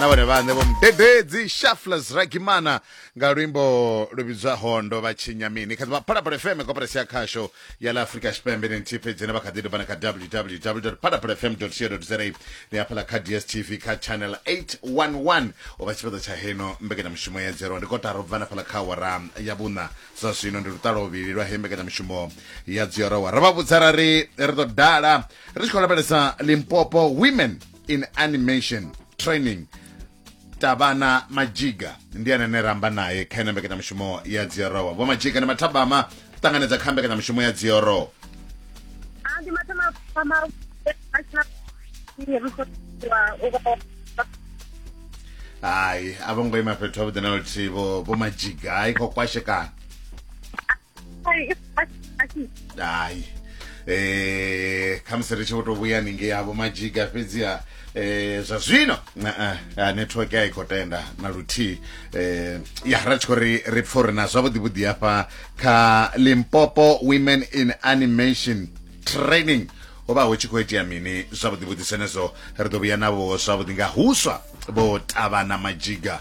na vhone vhaṋe vho mudededzi shaflas ragimana nga luimbo lu vhidzwaho ndo vha tshinya mini kha ḓivha phalaphala fm koperasi ya khasho ya la afrika tshipembe ni nthihi fhedzi ne vha kha ḓi dovha na kha www phalaphala fm co za ni hafhaḽa kha dstv kha channel 811 u vha tshifhaṱo tsha heno mbekanyamushumo ya dzerwa ndi kotara u bva na fhaḽa kha wara ya vhuṋa zwa zwino ndi lutalo vhili lwa he mbekanyamushumo ya dziorowa ro vha vhudza ra ri ri ḓo dala ri tshi khou lavhelesa limpopo women in animation training tavhana majiga ndi ane ne ramba naye kha ine mbekanyamushumo ya dziorowa vho majiga ndi mathabama ṱanganedza kha mbekanyamushumo ya dziorowa Ah, ndi matama ama national resource hayi a vho ngo ima fhethu havhuḓi na luthihi vho vho majiga i khou kwashekana dai eh khamusi ri tshi vho tou vhuya ningei havho majiga fhedziha eh zwa zwino na- ah, network a i khou tenda na luthihi eh ya ra tshi khou ri ri pfa uri na zwavhuḓi vhuḓi hafha kha limpopo women in animation training ho vha hu tshi khou itea mini zwavhuḓi vhuḓi zwenezwo ri ḓo vhuya navho zwavhuḓi nga huswa vho tavhana majiga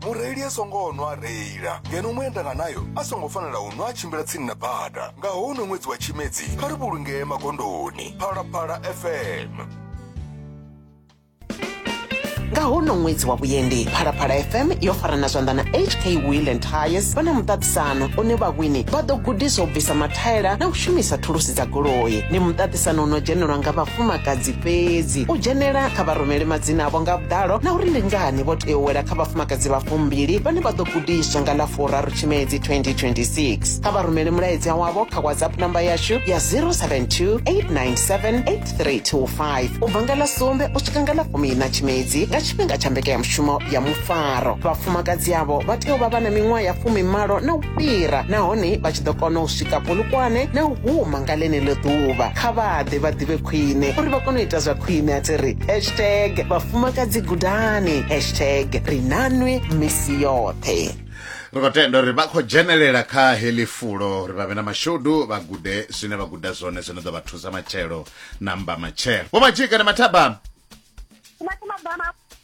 mureili a songo nwa a reila ngeno muendanga nayo a songo fanela u nwa a tshimbila tsini na bada nga houno ṅwedzi wa tshimedzi kha ri vhulungee magondoni phalaphala fm nga hono ṅwedzi wa vhuendi phalaphala fm yo farana zwanḓa na hk wheel and tires vha na muṱaṱisano une vhawini vha ḓo gudiswa u bvisa mathaela na u shumisa thulusi dza goloi ni muṱaṱisano Musanda u no dzhenelwa nga vhafumakadzi fhedzi. U dzhenela kha vha rumele madzina avho nga vhuḓalo na uri ndi ngani vho tea u wela kha vhafumakadzi vha fumbili vhane vha ḓo gudiswa nga ḽa furaru Tshimedzi 2026. Kha vha rumele mulaedza wavho kha WhatsApp namba yashu ya 072 897 8325 u bva nga ḽa sumbe u swika nga ḽa fumiiṋa Tshimedzi nga tshifhinga tsha mbekanyamushumo ya mufaro. Vhafumakadzi avho vha tea u vha vha na miṅwaha ya fumimalo na fhira nahone vha tshi ḓo kona u swika Polokwane na u huma nga ḽeneḽo ḓuvha. Kha vha ḓe vha ḓivhe khwine uri vha kone u ita zwa khwine a thi ri hashtag vhafumakadzi gudani hashtag ri nanwe misi yoṱhe. Ri khou tenda uri vha khou dzhenelela kha heḽi fulo uri vha vhe na mashudu vha gude zwine vha guda zwone zwino ḓo vha thusa matshelo na mba matshelo. Vho Madzhika na Mathabama. Mathabama.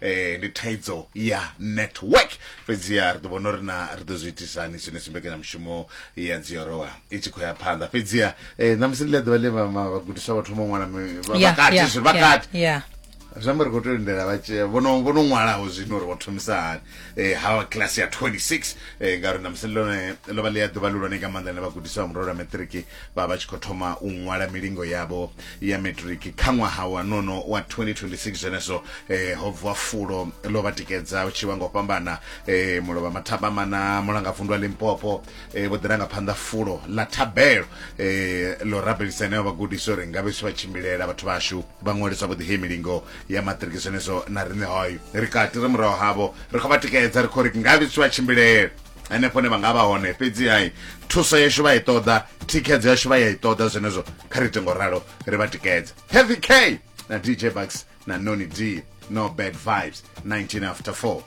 eh ndi thaidzo ya network fhedzi ya ri ḓo vhona uri na ri ḓo zwi itisani zwine zwi mbekanyamushumo ya dziorowa i tshi khou ya phanḓa fhedzi ya eh ṋamusi ndi ḽa ḓuvha ḽe vha- ma- vhagudiswa vha thoma u ṅwala mi- vha- Yeah, vhakati yeah, zwino yeah, vhakati yeah. zwi amba ri khou tea u lindela vha tshi- vho no vho no ṅwalaho zwino uri vho thomisa hani eh ha class ya 26 eh ngauri ṋamusi ḽone ḽo vha ḽi ya ḓuvha ḽihulwane nga maanḓa ḽine vhagudiswa vha murole wa maṱiriki vha vha tshi khou thoma u ṅwala milingo yavho ya matric kha ṅwaha wa nono wa 2026 zwenezwo eh, ho bvuwa fulo ḽo vha tikedza u tshi vha ngo fhambana eh, mulovha mathabama na mulangavundwa limpopo eh, vho ḓiranga phanḓa fulo ḽa thabelo eh, ḽo rabelisa heneo vhagudisi uri nga vhesi vha tshimbilela vhathu vhashu vha ṅwaliswa vho ḓihe milingo ya matric zwenezwo na riṋe hoyo ri kati ri muraho havho ri khou vha tikedza ri khou ri nga vhesi vha tshimbilela henefho ne vha nga vha hone fhedzi hai thuso yashu vha i ṱoḓa thikhedzo yashu vha ya i ṱoḓa zwenezwo kha ri tengo ralo ri vha tikedza heavy k na dj bucks na noni d no bad vibes 19 after 4